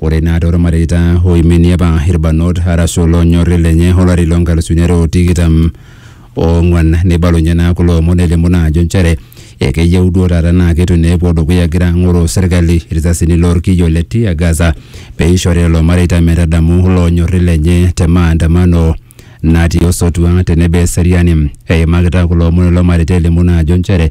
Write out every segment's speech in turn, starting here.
Ore naa toormareita oiminie apa irbanot arashu oloonyori lenye olari loo nkalusuni are o tikitam oong'wan neibalunye naa kulo omon elimu naa ajo nchere ekeyieu duo taata naa keitu naa epuo dukuya egira ang'oroo serkali irisasini loo lkiyo le tear gas pee eishori lelo mareita metadamu iloonyori lenye te maandamano natii osotua tenebo eseriani. Eimakita kulo omon lelo mareita elimu naa ajo nchere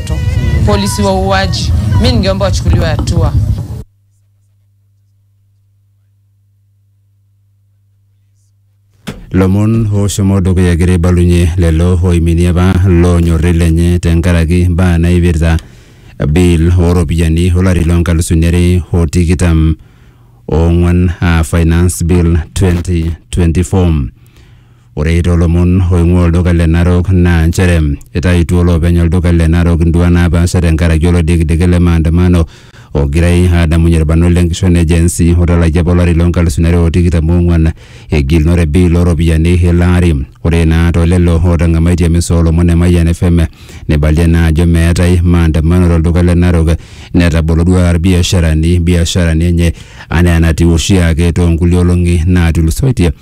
watoto. Polisi wauaji, mi ningeomba wachukuliwe hatua. lomon ooshomo dukuya egira aibalunye lelo oiminie apa loonyorri lenye tenkaraki mbaa naipirta bill ooropiyiani olari loo nkalusuni are o tikitam oong'wan aa finance bill 2024 Ore toolomon oing'ua olduka le Narok naa nchere eitaituo olopeny olduka le Narok induaa naapaasha tenkaraki olodikidiki le maandamano ogirai aadamunye ilbarnot le nkishon e Gen Z otalakia apa olari loo nkalusuni are o tikitam oong'uan egilunore bill oo ropiyiani ilo ari. Ore naa too lelo ootang'amaitie emisa oo lomon e Mayian FM neibalie naa ajo meetae maandamano to lduka le Narok netabolo duo taata ilbiasharani ibiasharani enye anaa enatiu oshiake too nkulie olong'i naatulusoitie.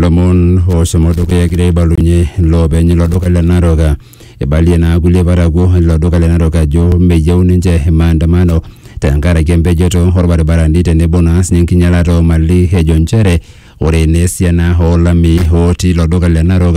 lomon oshomo dukuya egira aibalunye loopeny ilo duka le Narok. Eibalie naa kulie parakuo ilo duka le Narok ajo meyieu ninche maandamano tenkaraki empejoto orbaribarani tenebo naa sinye enkinyalata omali ejo nchere ore naa esiana olamei otii ilo duka le Narok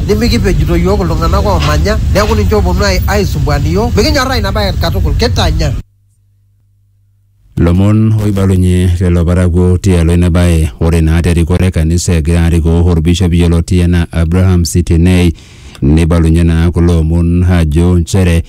Nimikipejito iyiook iltung'ana oomanya neaku ninche oopuonu aaisumbuan iyiook. Mikinyorraa ina bae katukul. Kitanya. Lomon oibalunye lelo parakuo tialo ina bae. Ore naa te rikore e kanisa egira arikoo olbishop yioloti anaa Abraham Sitinei neibalunye naa kulo omon aajo nchere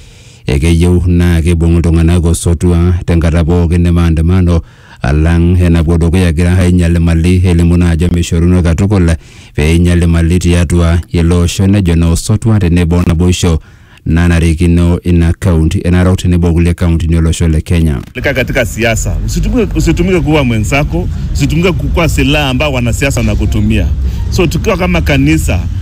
ekeyieu naa keibung iltung'ana osotua tenkata pooki e maandamano alang enapuo dukuya egira ainyal imali elimu naa ajo meishoruno katukul pee einyal imali tiatua ele osho nejo naa osotua tenebo o naboisho nanarikino ina kaunti e Narok tenebo o kulie kauntini olosho le Kenya. Lika katika siasa. Usitumike, usitumike kuwa mwenzako, usitumike kuwa silaha ambao wanasiasa wanakutumia. So tukiwa kama kanisa